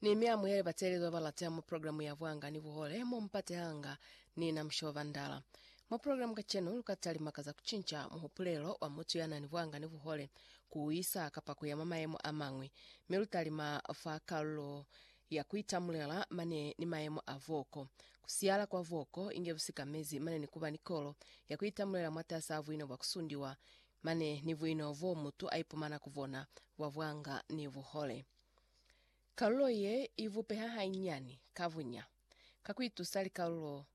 Ni mi amuhele bateelezi babalate mu programu ya Bwanga ni Buhole mo mupatehanga ni na Mushoba Bandala. Mu programu kacenu lukata limaka za kucinca muhupulelo wa mutu ya nani bwanga ni buhole, kuuisa kapa kuya mwa mayemo a mañwi, mi lutalima fa kalulo ya kuitamulela mane ni mayemo a voko, kusiyala kwa voko inge busikamezi mane ni kuba ni kolo ya kuitamulela mwatasi a buina bwa kusundiwa Mane ni buino boo mutu aipumana ku bona, bwa bwanga ni buhole. Kalulo ye ibupeha hanyinyani ka bunya, ka kuitusa likalulo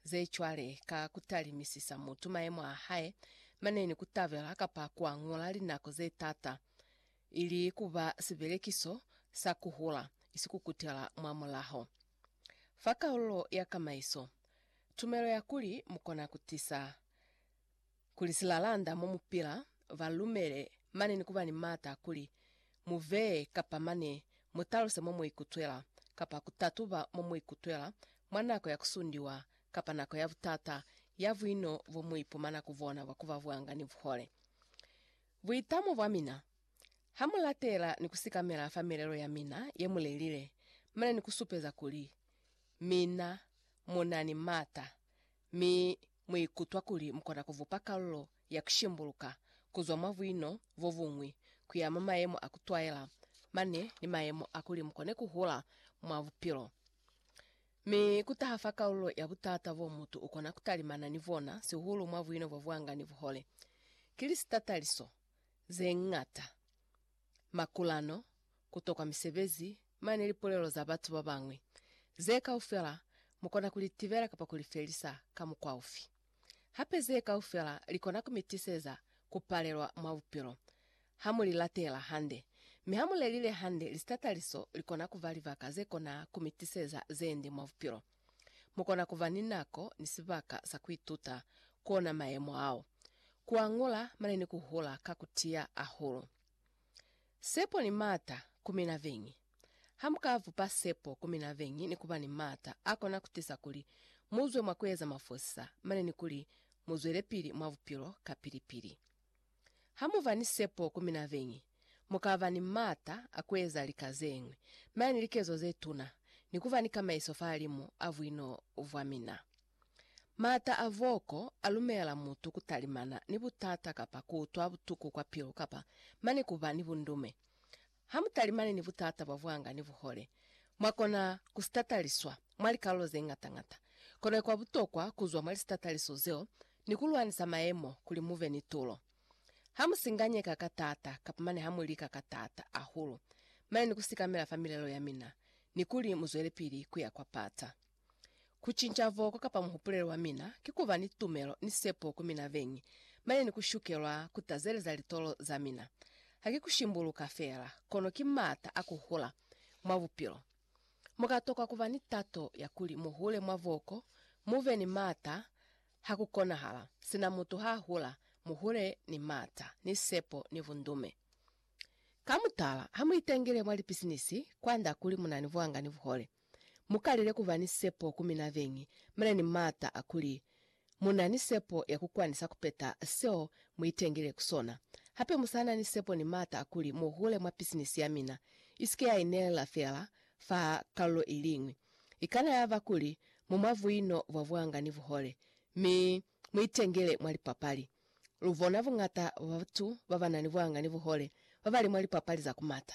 ze cwale ka kutalimisisa mutu maemo a hae mane ni kutabela kapa kuañola linako ze taata, ili kuba sibelekiso sa kuhula, isi kukutela mwa mulaho. Fa kalulo ya kamaiso, tumelo ya kuli mukona kutisa kuli silalanda mo mu pila ba lumele mane ni ku ba ni m'ata kuli mu vee kapa mane mu taluse mo mu ikutwela kapa ku tatuba mo mu ikutwela mwa nako ya ku sundiwa kapa nako ya butata ya buino bo mu ipumana ku bona bwa ku ba bwanga ni buhole. Buitamo bwa mina, Ha mu latela ni ku sikamela fa milelo ya mina ye mu lelile mane ni ku supeza kuli mina mu na ni m'ata mi Mu ikutwa kuli mu kona ku vupa kalulo ya ku shimbuluka ku zwa mwa buino bo buñwi ku ya mwa mayemo a ku twaela mane ni mayemo a kuli mu kone ku hula mwa bupilo. Mi ku taha fa kalulo ya butata bo mutu u kona ku talimana ni bona, sihulu mwa buino bo bwanga ni buhole, ki litataliso ze ñata. makulano, kutokwa misebezi, mane lipulelo za batu babañwi. Ze kaufela mukona kulitibela kapa kulifelisa ka mukwa ufi? Hape ze kaufela likona kumitiseza kupalelwa mwa bupilo hamulilatela hande. Mi hamulelile hande, lisitataliso likona kuba libaka zekona kumitiseza zendi mwa bupilo. Mu kona ku ba ni nako ni sibaka sa ku ituta ku ona mayemo ao, ku añola mane ni ku hula ka ku tiya hahulu. Sepo ni maata ku mina beñi. Ha mu ka bupa sepo ku mina beñi ni ku ba ni maata a kona ku tisa kuli mu zwe mwa ku eza mafosisa mane ni kuli mu zwelepili mwa bupilo kapili-pili. Ha mu ba ni sepo ku mina beñi, mu ka ba ni m'ata a ku eza lika ze ñwi, m'a ni likezo ze tuna, ni ku ba ni kamaiso fahalimu a buino bwa mina. M'ata a voko a lumela mutu ku talimana ni butata kapa ku utwa butuku kwa pilu kapa mane ku ba ni bundume. Hamutalimani ni butata bwa bwanga ni buhole, mwakona kusitataliswa mwa likalulo zeñata-ñata. Kono ikwa butokwa kuzwa mwa lisitataliso zeo ni kulwanisa mayemo kuli mube ni tulo. Hamusinganyeka ka taata kapa mane hamulika ka taata ahulu mane ni kusikamela fa milelo yamina ni kuli muzwelepili kuya kwa pata. Ku cinca voko kapa muhupulelo wa mina ki ku ba ni tumelo ni sepo ku mina beñi, mane ni ku shukelwa ku tazeleza litolo za mina. Ha ki ku shimbuluka feela, kono ki m'ata a ku hula mwa bupilo. Mu ka tokwa ku ba ni tato ya kuli mu hule mwa voko, mu be ni m'ata ha ku konahala. Sina mutu ha hula, mu hule ni m'ata, ni sepo, ni bundume. Ka mutala, ha mu itengele mwa lipisinisi, kwand'a kuli mu na ni buanga ni buhole. Mu kalile ku ba ni sepo ku mina beñi, mi na ni maata a kuli mu na ni sepo ya ku kwanisa ku peta seo mu itengile ku sona. Hape mu sa na ni sepo ni maata a kuli mu hule mwa pisinisi ya mina, i si ke ya inelela feela fa kalulo i liñwi. I kana ya ba kuli mu mwa buino bwa buanga ni buhole, mi mu itengile mwa lipapali. Lu bona buñata bwa batu ba ba na ni buanga ni buhole ba ba li mwa lipapali za ku mata.